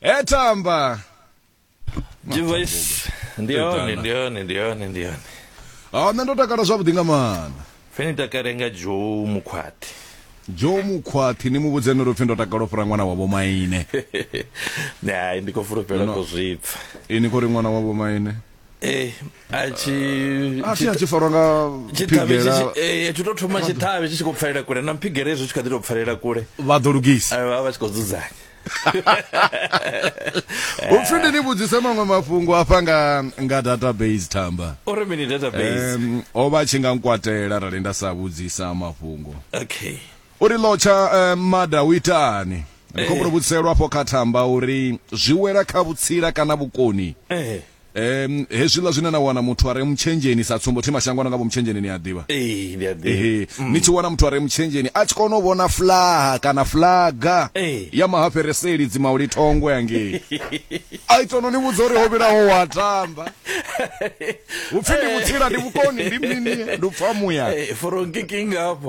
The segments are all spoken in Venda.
etamba device ndi hone ndi hone ndi hone ndi hone a nṋe ndo takala zwavhuḓi nga maana pfe ni takale nga joe mukhwathi joe mukhwathi ni mu vhudze ni ri pfi ndo takala u fhira ṅwana wa vhomaine hai ndi khou fulufhela ko zwipfa ini khou ri ṅwana wa vhomaine ee a tshi a tshi a tshi farwa nga tshiṱhavhe phigela tshi- eh, tshi to thoma tshiṱhavhe tshi tshi khou pfalela kule na mphigele hezwo tshi kha ḓi tou pfalela kule vha ḓo lugisa a vha vha tshi khou dzudzanya upfi ndi ni vhudzise maṅwe mafhungo afha nga nga database tamba uri mini database um, o vha a tshi nga nkwatela arali nda sa vhudzisa mafhungo okay uri lotsha um, mada u itani ndi khou mbuno vhudzelwa afho kha thamba uri zwi wela kha vhutsila kana vhukoni eh um hezwiḽa zwine na wana muthu a re mutshenzheni sa tsumbo thi mashango ana nga vho mutshenzheni ni a ḓivha eh ndi a ḓi ehe mm. ni tshi wana muthu a re mutshenzheni a tshi kona u vhona flaha kana flaga eh. ya mahafereseli dzimauli thongo yangei a ita no ni vhudza uri ho vhilaho wa tamba upfi ndi eh. vhutsila ndi vhukoni ndi mini ndi upfa muya eh, for kicking up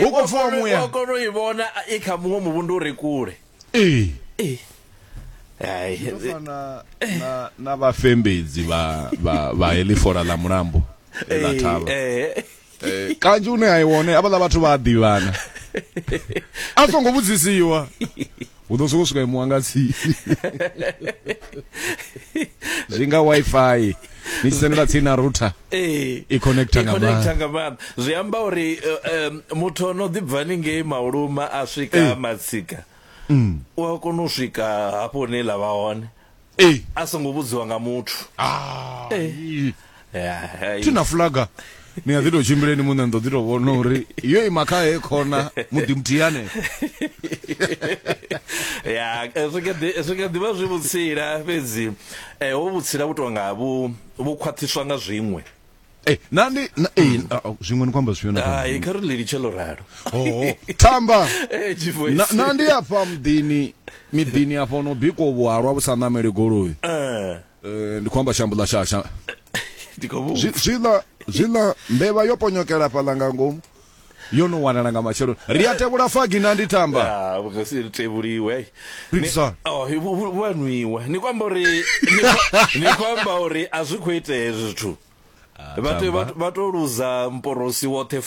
hu khou pfiwa muya kona u i vhona i kha muṅwe muvhundu uri kule ee ee fana na na vhafembedzi vha vha vha helifola ḽa mulambo ḽa thavha eh, eh. eh, kanzhi une a i wone avhaḽa vhathu vha a ḓivhana a songo vhudzisiwa u ḓo sokou swika imuwa nga tsini zwi nga wifi ni tshi sendela tsini na router ee i connecta nga connecta nga maanḓa zwi amba uri eh, muthu o no ḓibva ni ngei mauluma a swika matsika mm. u a kona u swika hafho hune la vha hone Ee. a songo vhudziwa nga muthu Ah, ii. Yeah, hai. thi na fulaga ni a ḓi tou tshimbileni muṋe ni ḓo ḓi tou vhona uri yo ima kha he khona muḓi muthihi hanefho ya eh, zwi kha ḓi- zwi kha ḓivha zwi vhutsila fhedzi eh, ho vhutsila vhu tonga vhu vhu khwaṱhiswa nga zwiṅwe Eh, na ndi na eh ah, oh, zwiṅwe ni kwamba zwifhio na kwamba? hai kha ri ḽi litshe ḽo ralo Oh, tamba Eh, G-Voice. na na ndi afha muḓini miḓini afha ono bikwa vhuhalwa vhu sa namele goloi Eh, Eh, ndi khou amba shambo ḽa shasha ndi khou vhu- Zwi- zwiḽa zwiḽa mbevha yo ponyokela fhaḽa nga ngomu yo no wanala nga matsheloni ri a tevhula fagi na ndi tamba ah, vhugasi ri tevhuliwe oh, vhanwiwe ni kwamba uri ni kwamba uri a zwi khou itea hezwi zwithu ah, vha to luza mporosi woṱhe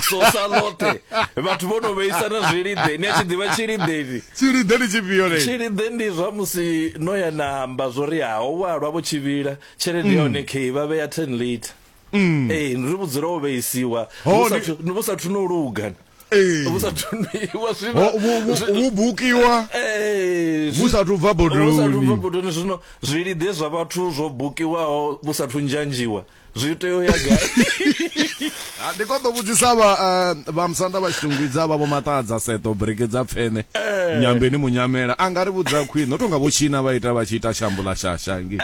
sosa loṱhe vhathu vho no vheisana zwilide ni a tshi ḓivha tshilideni tshilide ndi tshifhio le tshilide ndi zwa musi no ya na amba zwo ri ha ho walwa vho tshivhila tshelede ya hone mm. khe vha vhea 10 liter mm. ee ri vhu dzula wo vheisiwa vhu sathu no luga vhu sathu noiwa zwivhu bukiwa vhu sathu bva bodoni zwino zwilide zwa vhathu zwo bukiwaho vhu sathu nzhanzhiwa zwi tea u ya gai ah, ndi koḓo vhudzisa vha eh, vha musanda vha tshitungwidza vha vho maṱadza seto breke dza pfene eh. nyambeni munyamela a nga ri vhudza khwine o tonga vho tshina vha ita vha tshi ita shambo ḽa shasha ngi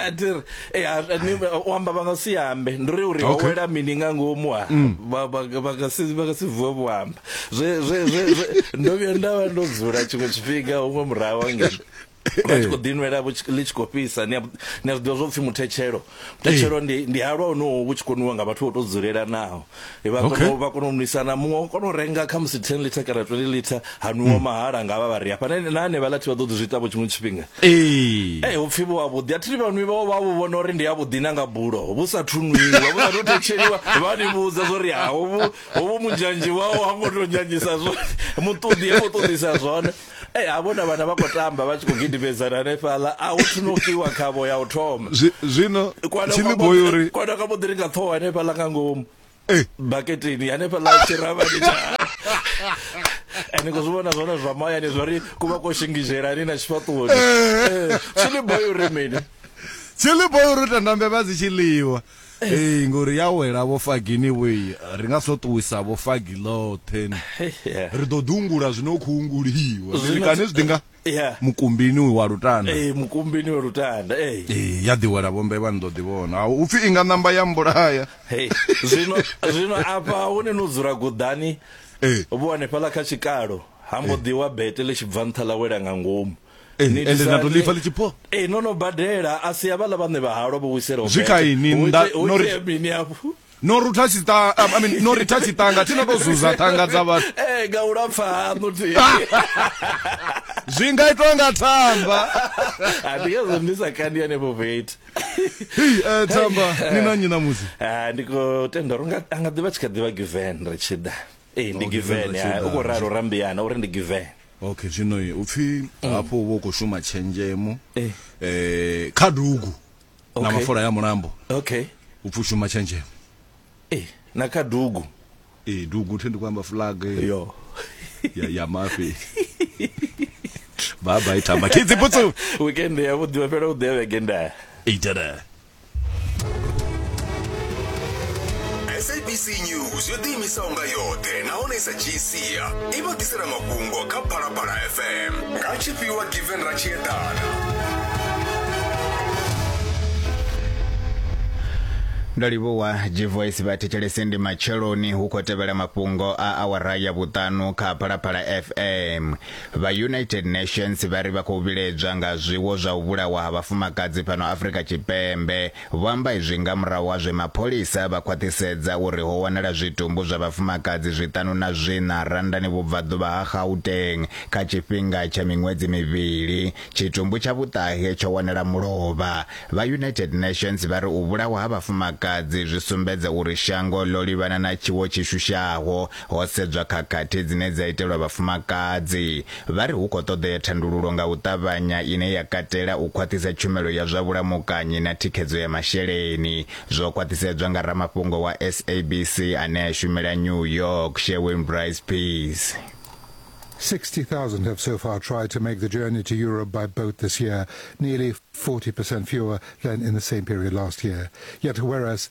Eh, a- a- ni- u amba vha nga si ambe ndi ri uri ho Okay. wela mini nga ngomu ha Vha- vha- vha nga si- vha nga si vuwe vho amba Zwe- zwe- zwe- zwe- ndo vhuya nda vha ndo dzula tshiṅwe tshifhinga huṅwe murahu wangeni vha tshi khou ḓinwela vho tshi- ḽi tshi khou fhisa ni a ni a zwi ḓivha zwo pfhi muthetshelo muthetshelo ndi ndi halwa honowo vhu tshi koniwa nga vhathu vho tou dzulelanaho vha okay. vha kona u nwisana muṅwe wa kona u renga kha musi 10 liter kana 20 liter ha nwiwa mm. mahala nga vha vha ri hafha na ane vha lathi vha ḓo zwi ita vho tshiṅwe tshifhinga eh eh u pfi vho vhuḓi athi vha nwi vha vha vho vhona uri ndi ya vhuḓi na nga bulo vhu sa thunwiwa vhu sa thu thetsheliwa vha ni vhudza zori ha ho vhu ho vhu munzhanji wao ha ngo to nyanjisa zwo muṱuḓi ha ngo ṱuḓisa zwone Ei ha vhona vhana vha khou tamba vha tshi khou gidimedzana hanefhaḽa a hu thunokiwa khavho ya u thoma zwino tshiliboyo uri kwana ka boḓi ri nga ṱhoho hanefhaḽa nga ngomu eh. baketeni hanefhaḽa tshiravhani tsha ende ngo zwi vhona zwone zwa mahayani zwa ri ku vha ko shingizelani na tshifhaṱuwoni eh. eh, tshiliboyo uri mini tshiliboyo uri tandambe vha dzi tshiliwa Ee ngori ya wela vho fagini vho i ri nga so ṱuwisa vho fagi ḽoṱhe ni. Yeah. Ri ḓo ḓungula zwino khou unguliwa. Zwino- Ri kane zwi ḓi nga Yeah. mukumbini uyu wa lutanda. Ee mukumbini wa lutanda. Ee. Ee ya ḓi wela vho mbevha ni ḓo ḓi vhona. Ha, U pfi i nga ṋamba ya mbulaya. Hey, zwino zwino afha hune no dzula guḓani Ee. vho hanefhala kha tshikalo ha mbo ḓi wa bete ḽi tshi bva nṱha ḽa wela nga ngomu Ee, Ni ende lisa na to ḽi- ḽifa ḽi tshi pho ee no no badela a si havhaḽa vhaṋe vha halwa vho wisela u Zwi bete. kha ini, Hu nda- ite- hu no ri- itea mini hafhu no rutha tshiṱa um, I mean, no ritha tshiṱanga tshi no to zuza ṱhanga dza vhathu ee nga u lapfa haṋu thi zwi nga itwa nga thamba Ah, ndi ngazwo ndi sa kandi hanefho veti Hei, eh, thamba ni na nnyi ṋamusi Ah, ndi khou tenda uri unga- a nga ḓivha tshi kha ḓivha given ri tshi ḓa ee ndi Oh, given, given ri tshi ah, ḓa. u khou ralo rambiana uri ndi given okay zwino u pfhi mm. hafho uvha u khou shuma tshenzhemo eh. eh kha dugu na mafola ya mulambo okay u pfhi u shuma tshenzhemo eh na kha dugu eh dugu thi ndi khou amba flag eh. yo ya ya mafi baba itamba kidzi putsu weekend ya vhuḓi vha fhela u ḓe vhege nda itela sabc news yo ḓiimisaho nga yoṱhe nahone sa dzhii sia i vha ḓisela mafhungo kha phalaphala fm nga tshifhiwa given ra tshi eḓana ndo livhuwa gvoice vha thetshelese ndi matsheloni hu khou tevhela mafhungo a awara ya vhuṱanu kha phalaphala fm Vha United Nations vha ri vha khou vhiledzwa nga zwiwo zwa u vhulawa ha vhafumakadzi fhano Afrika Tshipembe. Vho amba izwi nga murahu ha zwe mapholisa vha khwaṱhisedza uri ho wanala zwitumbu zwa vhafumakadzi zwiṱanu na zwiṋa Randani vhubvaḓuvha ha Gauteng kha tshifhinga tsha miṅwedzi mivhili. Tshitumbu tsha vhuṱahe tsho wanala mulovha. Vha United Nations vha ri u vhulawa ha vhafumakadzi zwi sumbedza uri shango ḽo livhana na tshiwo tshi shushaho ho sedzwa khakhathi dzine dza itelwa vhafumakadzi. Vha ri hu khou ṱoḓea thandululo nga u ṱavhanya ine ya katela u khwaṱhisa tshumelo ya zwa vhulamukanyi na thikhedzo ya masheleni. Zwo khwaṱhisedzwa nga ramafhungo wa SABC ane a shumela New York, Sherwin Bryce Pease. 60,000 have so far tried to make the journey to Europe by boat this year, nearly 40% fewer than in the same period last year. Yet whereas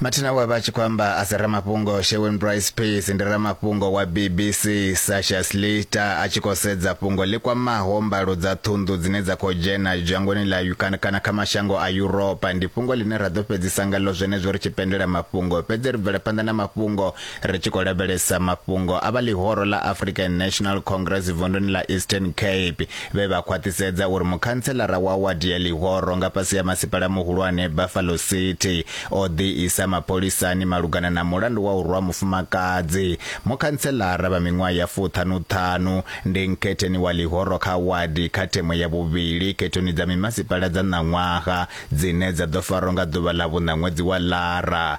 mathina we vha tshi khou amba a si ramafhungo sherwin brice peace ndi ramafhungo wa bbc sasha slita a tshi khou sedza fhungo ḽi kwamaho mbalo dza ṱhunḓu dzine dza khou dzhena dzhangoni ḽa ukana kana kha mashango a yuropa ndi fhungo ḽine ra ḓo fhedzisa ngaḽo zwenezwo ri tshi pendela mafhungo fhedzi ri bvela phanḓa na mafhungo ri tshi khou lavhelesa mafhungo a vha ḽihoro ḽa african national congress vunduni ḽa eastern cape vhe vha khwaṱhisedza uri mukhantselara wa wadi ya ḽihoro nga fhasi ya masipala muhulwane buffalo city o ḓiisa mapholisani malugana na mulandu wa u rwa mufumakadzi mukhantselara vha miṅwaha ya fuṱhanuṱhanu ndi nkhetheni wa ḽihoro kha wadi kha themo ya vhuvhili khethoni dza mimasipala dza ṋaṅwaha dzine dza ḓo farwa nga ḓuvha ḽa vhuṋa ṅwedzi wa lara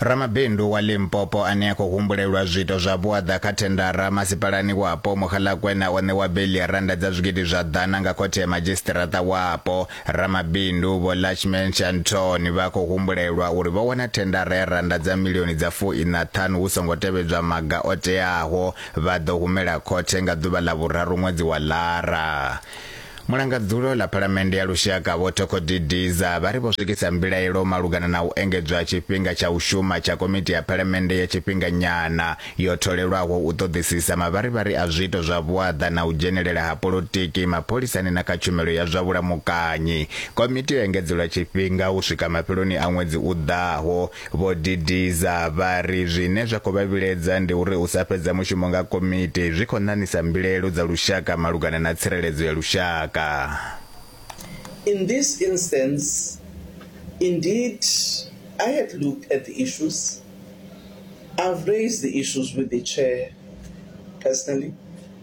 Ramabindu wa Limpopo ane a khou humbulelwa zwiito zwa vhuaḓa kha thendara masipalani wapo Mogalakwena o ṋewa beiḽi ya rannda dza zwigidi zwa ḓana nga khothe ya madzhisiṱiraṱa wapo. Ramabindu Vho Lachman Shanthoni vha khou humbulelwa uri vho wana thendara ya rannda dza milioni dza fu-iṋa ṱhanu hu songo tevhedzwa maga o teaho vha ḓo humela khothe nga ḓuvha ḽa vhuraru ṅwedzi wa Lara. Mulangadzulo ḽa Phalamennde ya Lushaka Vho Thoko Didiza vha ri vho swikisa mbilaelo malugana na u engedzwa tshifhinga tsha u shuma tsha Komiti ya Phalamennde ya Tshifhinganyana yo tholelwaho u ṱoḓisisa mavharivhari a zwiito zwa vhuaḓa na u dzhenelela ha polotiki mapholisani na kha tshumelo ya zwa vhulamukanyi. Komiti yo engedzelwa tshifhinga u swika mafheloni a ṅwedzi u ḓaho. Vho Didiza vha ri zwine zwa khou vha vhiledza ndi uri u sa fhedza mushumo nga komiti zwi khou ṋaṋisa mbilaelo dza lushaka malugana na tsireledzo ya lushaka. In this instance, indeed, I had looked at the issues, I've raised the issues with the Chair personally,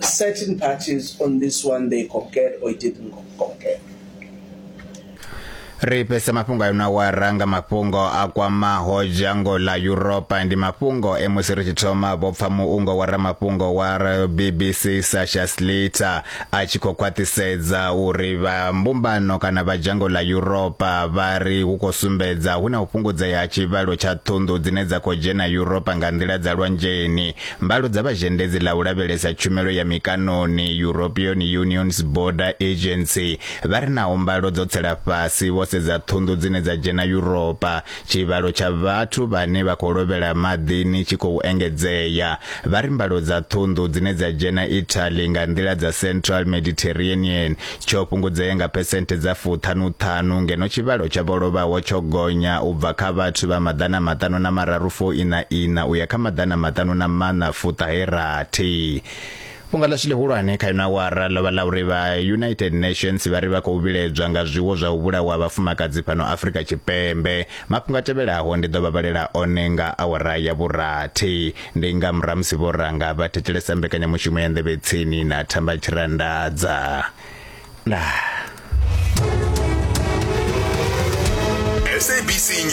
certain parties on this one they concurred or it didn't concur. ri fhese mafhungo ayo na wa ranga mafhungo a kwamaho dzhango ḽa yuropa ndi mafhungo e musi ri tshi thoma vho pfa muungo wa ramafhungo wa bbc sasha sliter a tshi khou khwaṱhisedza uri vha mbumbano kana vha dzhango ḽa yuropa vha ri hu khou sumbedza hu na u fhungudzea ha tshivhalo tsha ṱhunḓu dzine dza khou dzhena yuropa nga nḓila dza lwanzheni Mbalo dza vha zhendedzi ḽa u lavhelesa tshumelo ya mikanoni European Union's Border Agency vha ri naho mbalo dzo tsela fhasi vho sedza ṱhunḓu dzine dza dzhena Yuropa, tshivhalo tsha vhathu vhane vha khou lovhela maḓini tshi khou engedzea. Vha ri mbalo dza ṱhunḓu dzine dza dzhena Italy nga nḓila dza Central Mediterranean tsho fhungudzea nga phesenthe dza fuṱhanuṱhanu ngeno tshivhalo tsha vho lovhaho tsho gonya u bva kha vhathu vha maḓana maṱanu na mararu fo ina ina u ya kha maḓana maṱanu na maṋa fuṱahe rathi fhunga ḽashu ḽihulwane kha ino awara ḽo vha ḽa uri vha united nations vha ri vha khou vhiledzwa nga zwiwo zwa u vhulawa vhafumakadzi fhano afrika tshipembe mafhungo a tevhelaho ndi ḓo vha vhalela one nga awara ya vhurathi Ndi nga muramusi vho ranga vha thetshelesa mbekanyamushumo ya nḓevhe tsini na thamba tshirandadza. Ndaa. SABC News.